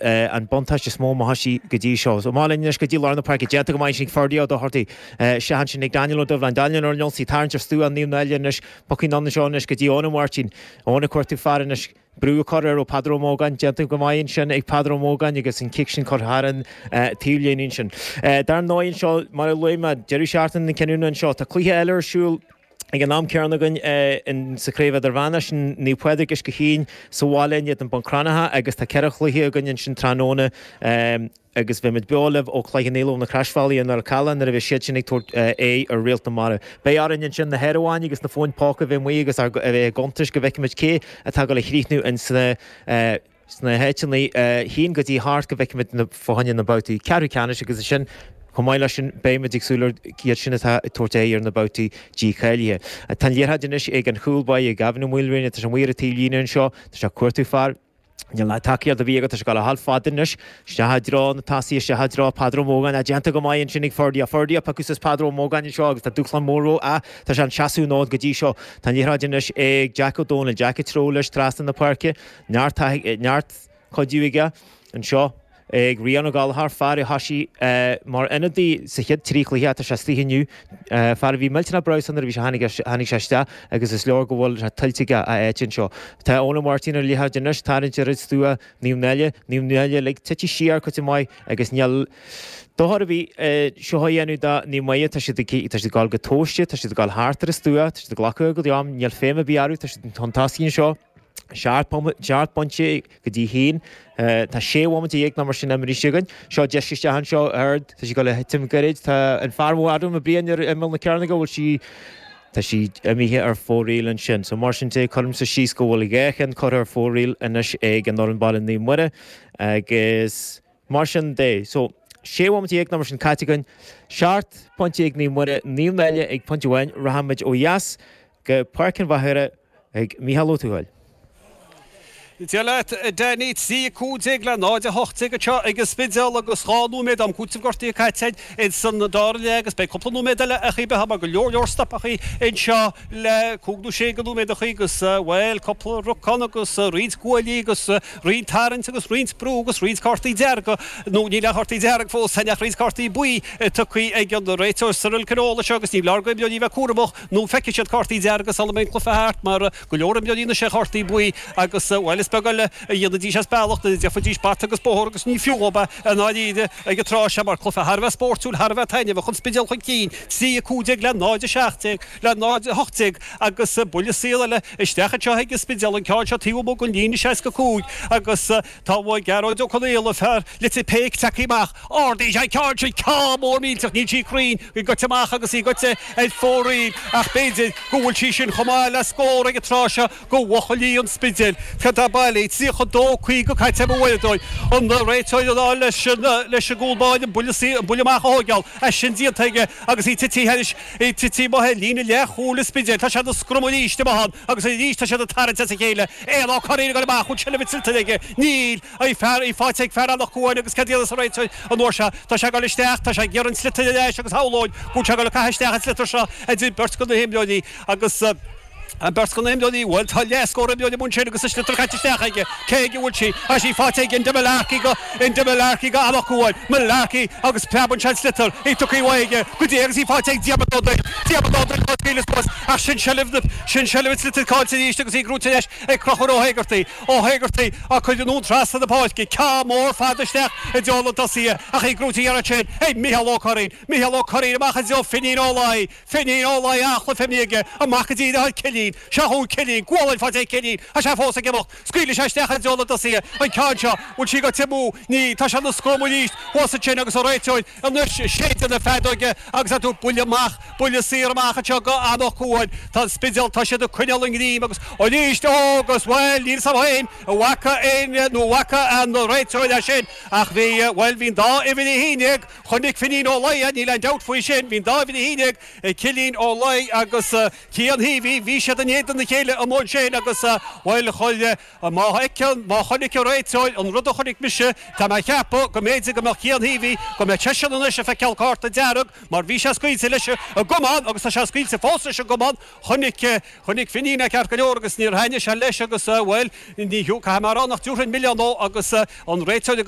an buntáiste is mó a bhí acu go dtí seo. Amach linn anois go dtí lár na páirce. Déanta go maith ansin ag Ferdia Ó Dochartaigh. Sea, ansin ag Daniel Ó Doibhlin. Daniel ar an ionsaí. Tarraingt ar stua Naomh Náille anois. Pas amháin anseo anois go dtí Eoin Ó Máirtín. Eoin ag cuartú fear anois. Brú á chur air ó Peadar Ó Mógáin. Déanta go maith ansin ag Peadar Ó Mógáin agus an cic sin curtha thar an taobhlíne ansin. Dar ndóigh anseo, mar a luaigh mé, deireadh seachtaine na cinniúna anseo. Tá cluiche eile ar siúl. Ag an am céanna againn sa chraobh idirmheánach ansin, Naomh Pádraig, Uisce Chaoin, sa bhaile inniu do Bhun Cranncha agus tá ceithre chluiche againn ansin tráthnóna agus bheimid beo libh ó chluiche Naomh Mhíchíl na Croisbhealaí i nDoire Chalann nuair a bheidh siad sin ag tabhairt aghaidh ar Réalt na Mara. Beidh orainn ansin na háireamháin agus na fóin póca a bheith amuigh agus a bheith ag cuntas go bhfeicfimid cé atá ag dul a chríochnú ins na sna háiteanna a haon go dtí a hocht go bhfeicfimid na foirne ins na babhtaí ceathrú ceannais agus ansin chomh maith leis sin beimid ag súil ar iad sin atá ag tabhairt aghaidh ar na babhtaí dícháilithe. Tá an liathróid anois ag an chúl baí ag Gavin Ó Maoilriana, tá sé amuigh ar an taobhlíne anseo, tá sé ag cuartú fear, níl tacaíocht ar bith aige, tá sé ag dul a dhul fada anois, isteach i dtreo na dtosaithe, isteach i dtreo Peadar Ó Mógáin, á déanta go maith ansin ag Ferdia, á Ferdia ag piocadh suas Peadar Ó Mógáin anseo agus tá dúshlán mór rompu, á tá sé ag seasamh an fhóid go dtí seo, tá an liathróid anois ag Jack Ó Dónaill, Jack ag treabhadh leis trasna na páirce, Neart cuidiú aige anseo ag Rián Ó Gallachóir, fear a thoisigh mar ionadaí sa chéad trí chluiche ach tá sé istigh inniu, fear a bhí millteanach breabhsánta nuair a bhí sé tháinig sé isteach agus is léir go bhfuil sé tuillte aige a áit anseo. Tá Eoin Ó Máirtín ar an liathróid anois, tarraingt ar stua Naomh Náille, Naomh Náille uilig tite siar cuid mhaith agus níl dochar ar bith seo a dhéanamh do Naomh Muire, tá siad ag goil go tomhaiste, tá siad ag goil thart ar an stua, tá siad ag glacadh a gcuid am, níl feidhm ar bith orthu, tá siad chun tosaigh anseo. Seacht bpointe go dtí a haon. Tá sé bhomaite dhéag nó mar sin imithe againn. Seo deis isteach anseo ard. Tá sí ag dul le titim gairid. Tá an fear mór, Adam Ó Briain, ar imeall na cearnóige. Bhfuil sí, tá sí imithe ar fóraoil ansin. So, mar sin de, cuirimse síos go bhfuil dhá cheann curtha ar fóraoil anois ag an fhoireann baile Naomh Muire agus, Mar sin de, so, 16 bhomaite nó mar sin caite againn, seacht bpointe ag Naomh Muire, Naomh Náille ag pointe amháin, rachaimid ó dheas go Páirc an Mhachaire chuig Micheál Ó Tuathail. Dia leat, a Danny, 3:15 le 0:18 anseo ag an Spidéal agus dhá nóiméad am cúitimh gortaithe caite againn ins an dara leath agus beidh cúpla nóiméad eile ach a bheith mar go leor leor stopadh anseo le cúig nó sé de nóiméad ach agus, bhuel, cúpla rucán agus roinnt guaillí agus. Roinnt tarraingt agus roinnt brú agus roinnt cártaí dearga, nó níl aon chártaí dearga fós ann ach roinnt cártaí buí tugtha ag an réiteoir Cyril Conneely anseo agus ní foláir d'imreoirí a bheith cúramach nó feicfidh siad cártaí dearga sula mbeidh an cluiche thart mar tá go leor imreoirí anois ar chártaí buí agus, bhuel, is beag eile a dhéanfaidís as bealach, go bhfaighidís bata agus bóthar agus ní fiú dhóib é i ndáiríre ag an tráth seo mar cluiche thar a bheith spóirtiúil, thar a bheith taitneamhach, An Spidéal chun cinn, 3:15 le 0:17 le 0:18. agus buille saor eile isteach anseo ag an Spidéal, an ceann seo taobh amuigh den líne 65, agus tá Gearóid Ó Conaola, fear lite péic, tagtha amach. Ardaíonn sé an ceann sin, ceann mór millteach, níl sí cruinn go goite amach agus í goite ar fóraoil, ach b'fhéidir go bhfuil sí sin chomh maith le scór ag an tráth seo do bhuachaillí an Spidéil. Sé dá baile, 32, 50 caite ag an bhfoireann dóibh, an réiteoir ag rá leis an gcúl báire, an buille amach a thógáil, tá sin déanta aige agus í titithe anois. Í titithe ar líne leath chúil an Spidéil tá siad ag scrumhadh aríst i mbun agus arís tá siad ag tarraingt as a chéile, í á corraí againn amach ón scrum is í caillte aige, Neil, í fear, í fáite ag fear Anach Cuain agus cad dhéanfas an réiteoir an uair seo? Tá sé ag goil isteach, tá sé ag iarraidh an sliotar ar ais agus shamhlóinn go bhfuil sé ag goil a caitheamh isteach an sliotar seo idir beirt de na himreoirí agus. An bheirt imreoirí Bhuel tá leath scór imreoirí an uair seo agus a sliotar caite isteach aige, cé aige a bhfuil sí? Tá sí faighte ag Enda Mullarkey go, Enda Mullarkey go an-aclúmhar, Mullarkey agus preabann sé an sliotar, í tugtha uaidh aige go dtí agus í faighte ag Diarmaid Ó Doill, Diarmaid Ó Doill á fáil aníos ach sin seilbh na, sin seilbh an tsliotair cáillte arís agus í aghaidh rith leis ag Clochar Ó hÉigeartaigh, Ó hÉigeartaigh á cuir anonn trasna na páirce, ceann mór fada isteach i dtreo na dtosaithe ach í gafa an iarracht sin ag Micheál Ó Curraoin, Micheál Ó Curraoin amach i dtreo Finín Ó Laoi, Finín Ó Laoi ach ní hé, Finín aige, amach i dtreo Cillín, seo chugainn Cillín, gualainn faighte ag Cillín, tá sé fós ag imeacht, scaoileann sé isteach i dtreo na dtosaithe, an ceann seo, bhfuil sí ag Tim Ó, ní, tá sé ina scrum arís, thuas ansin agus an réiteoir, anois séideadh na feadóige agus á tá buille amach, buille saor amach anseo go Anach Cuain, tá an Spidéal, tá siad ag coinneáil a ngreim agus arís, ó agus, bhuel níl 's agam féin an bhfaca Éinne nó an bhfaca an réiteoir é sin ach bhí, bhuel bhí an dá uimhir a haon dhéag, Chonaic Finín Ó Laoi é, níl aon dabht faoi sin. Bhí an dá dheartháir, Cillín Ó Laoi agus Cian Hí, bhí, bhí siad in éadan a chéile amuigh ansin agus, bhuel, chuile, má fheiceann, má chonaic an réiteoir an rud a chonaic mise, tá mé a cheapadh go mb'fhéidir go mbeadh Cian Hí, bhí, go mbeadh seisean anois ag feiceáil cárta dearg mar bhí sé scaoilte leis an gcamán agus tá sé scaoilte fós leis an gcamán. Chonaic, chonaic Finín é ceart go leor agus níor thaitnigh sé leis agus, bhuel, ní, caithfidh mé a rá nach dtabharfainn milleán dó agus an réiteoir ag.